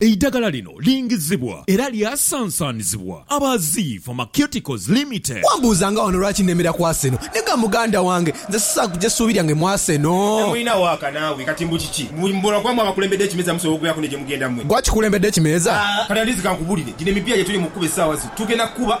Eidagala lino lingizibwa era lyasansanizibwa aba Zii Pharmaceuticals Limited. Wambuuza nga wano lwaki nemera ku Arsenal. Nega muganda wange, nze sisaagh kuja suubi lyange mu Arsenal. Temulina waaka naawe kati mbu kiki? Mbu mbu lwakuba mwe abakulembedde ekimeeza musobola okubeeraku ne gye mugenda mwe. Gwe akikulembedde ekimeeza? Aah kati at least kankubulire, gino emipiira gye tuli mu kukuba essaawa zino tugenda kukuba.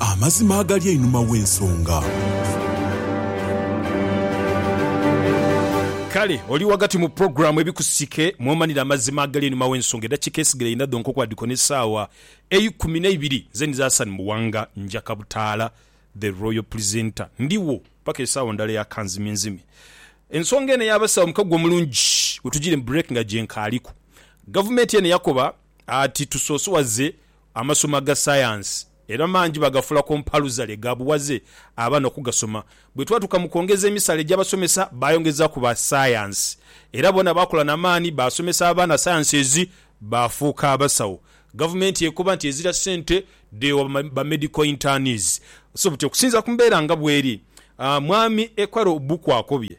amazima agali einhuma w'ensonga. Kale oli ghagati mu pulogulaamu Ebikusike mw'omanira amazima agali einhuma w'ensonga. Eddakiika esigaire inha dhonka okubadhiko n'essaawa eikumi n'eibiri. Nze ndidhi Hassan Muwanga njaka butaala, The Royal Presenter. Ndigho paka esaawa ndala eya kanzimyenzimye. Ensonga eno ey'abasawo mukago omulungi wetugire mu break nga gyenkaaliku. Gavumenti eno yakoba. ati tusosowaze amasomo aga sayansi era mangi bagafuula kompaluza lye gaabuwaze abaana okugasoma. Bwe twatuuka mu kwongeza emisaala egy'abasomesa baayongezaaku ba sayansi era boona baakola na maani baasomesa abaana sayansi ezi baafuuka abasawo. Gavumenti ekoba nti ezira ssente dheewa ba medical internees. So buti okusinziira ku mbeera nga bweri, Mwami Ekwaro Obukwa akobye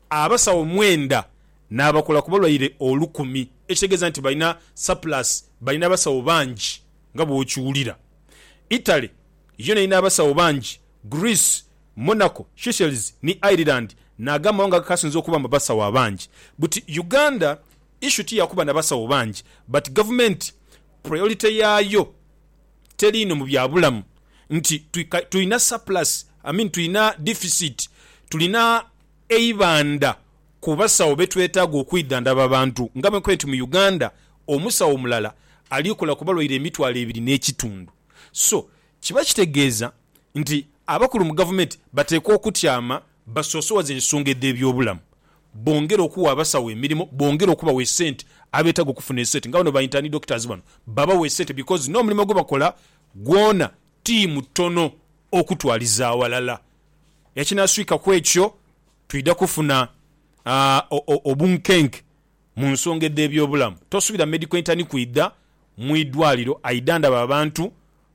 abasawo mwenda n'abakola ku balwaire olukumi, ekitegeeza nti balina surplus, balina abasawo bangi nga bw'okiwulira. Italy yo n'erina abasawo bangi, Greece, Monaco, Seychelles ni Ireland nago amawanga agakaasinze okuba mu basawo abangi. Buti Uganda issue ti ya kuba na basawo bangi but gavumenti priority yaayo teri inho mu bya bulamu nti tulina surplus, I mean tulina deficit, tulina Eibandha ku basawo be twetaaga okwidhandhaba abantu nga bwenkubye nti mu Uganda omusawo omulala ali kola ku balwaire emitwalo ebiri n'ekitundu. So kiba kitegeeza nti abakulu mu gavumenti bateekwa okutyama basoosowaze ensonga edh'ebyobulamu, bongere okuwa abasawo emirimo, bongere okubawa esente abeetaaga okufuna esente nga bano ba intern doctors bano babawe esente because n'omulimo gwebakola gwona tiimu ttono okutwaliza awalala. Ekinaswika ku ekyo, twidha kufuna obunkenke mu nsonga edh'ebyobulamu. Tosubira medical intern kwidha mu idwaliro aidha ndaba abantu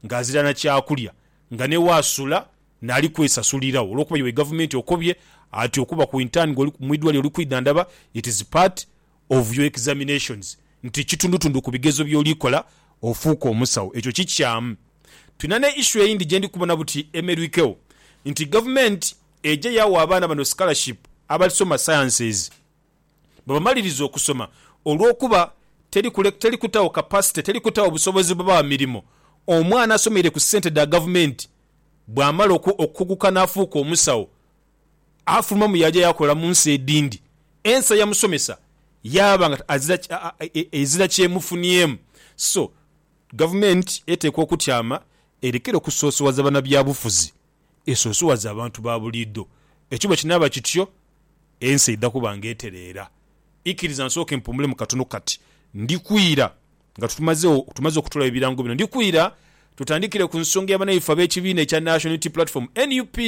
ng'azira na kyakulya, nga ni waasula naali kwesasuliragho olwokuba iwe Gavumenti okobye ati okuba ku intern gwe mu idwaliro oli kwidha ndaba, it is part of your examinations nti kitundutundu ku bigezo byoli kola ofuuke omusawo. Ekyo kikyaamu. Tulina ne issue eyindi gyendi kubona buti emerwikewo nti government eje yawa abaana bano scholarship abasoma sciences bwebamaliriza okusoma olwokuba teri kule teri kutawo capacity teri kutawo busobozi bubawa mirimo omwana asomeire ku sente dha government bwamala oku okukuguka nafuuka omusawo afulumamu yaaja yaakola mu nsi edhindi. Ensa ya musomesa yaaba nga ezira ky'emufuniemu. So, gavumenti eteekwa okutyama erekere okusoosowaza banabyabufuzi, esoosowaze abantu ba buliidho. Ekyo bwe kinaaba kityo, ensi eidha kuba nga etereera. Ikiriza nsooke mpuumulemu katono kati. Ndikwira, nga tumaze okutoolawo ebirango bino, ndikwira tutandikire ku nsonga ya banaife ab'ekibiina ekya National Unity Platform, nup,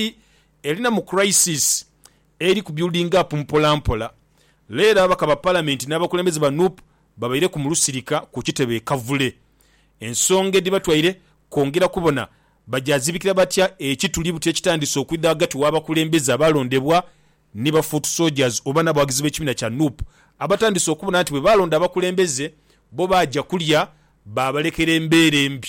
Elina mu crisis eri ku building up mpola mpola, leero ababaka ba palamenti n'abakulembeze ba nup babaireku mu lusirika ku kitebe e Kavule. Ensonga edhibatwaire kwongera kubona bagyazibikira batya ekituli buti ekitandise okwidha ghagati w'abakulembeze abaalondebwa ni ba foot soldiers oba n'abawagizi b'ekibiina kya nup abatandise okubona nti bwe baalonda abakulembeze bo baaja kulya baabalekera embeera embi